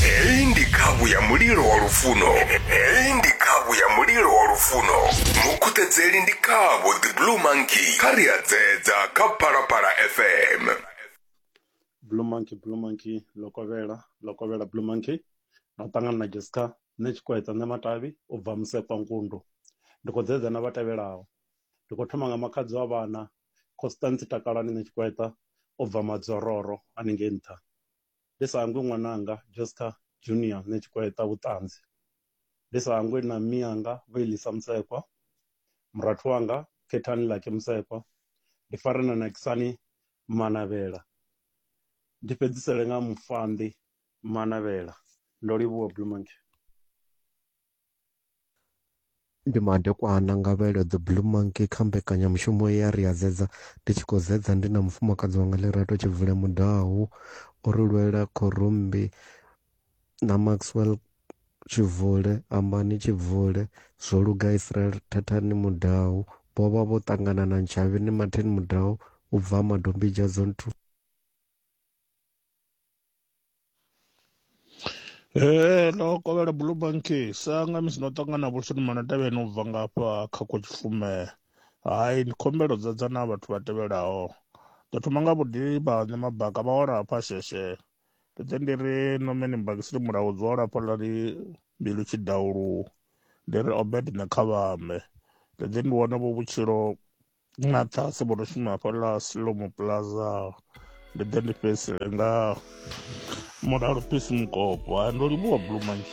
heyi ndi khavhu ya mulilo wa lufuno heyi ndi khavhu ya mulilo wa lufuno mukhuṱedzeli ndi khavho the blue monkey kha ri a dzedza kha phalaphala fm blue monkey blue monkey lokovhela lokovhela blue monkey na u ṱangana na jessica nṋe tshikwedza nṋe matavhi u bva musepa nkundu ndi khou dzedza na vha tevhelaho ndi khou thoma nga makhadzi wa vhana constance takalani nṋe tshikwedza u bva madzororo haningei nṱha Ndi sa hangwi ṅwananga Josca Junior nṋe Tshikweṱa Vhuṱanzi, ndi sa hangwi na mmianga Vho Elisa Mutsekwa, murathu wanga Khethani Lucky Mutsekwa, ndi fare na Nakisani Manavhela, ndi fhedzisele nga Mufhanḓi Manavhela. Ndo livhuwa Blue Monkey. Ndi madekwana nga vha elo The Blue Monkey kha mbekanyamushumo ye ya ri ya zedza ndi tshi khou zedza ndi na mufumakadzi wanga Lerato Tshivule Mudau o ri lwela Khorumbi na Maxwell Tshivule, Ambani Tshivule, Zwoluga Israel Thathani Mudau vho vha vho ṱangana na Ntshavheni Martin Mudau u bva Madombidzha Zone 2. ee ndo kovhela blue banki sa nga misi ndo ṱangana na vhulshoni manatevheni u bva ngafha kha kotshipfume hai ndi khumbelo dza dza na vhathu vha tevhelaho ndo thoma nga vhuḓivha ne mabaka vha wala hafha sheshe ndi ḓe ndi ri nomeni mbakisini mulaho dzi wala hafhaḽa ri mbilu tshidaulu ndi ri obed ne kha vhambe ndi ḓe ndi wane vho vhutshilo na ṱhase vho no shuma hafhaḽa silomo plaza ndi ḓe ndi fhedzisele nga mulalo pisi mukopo ndo livhuwa blue manji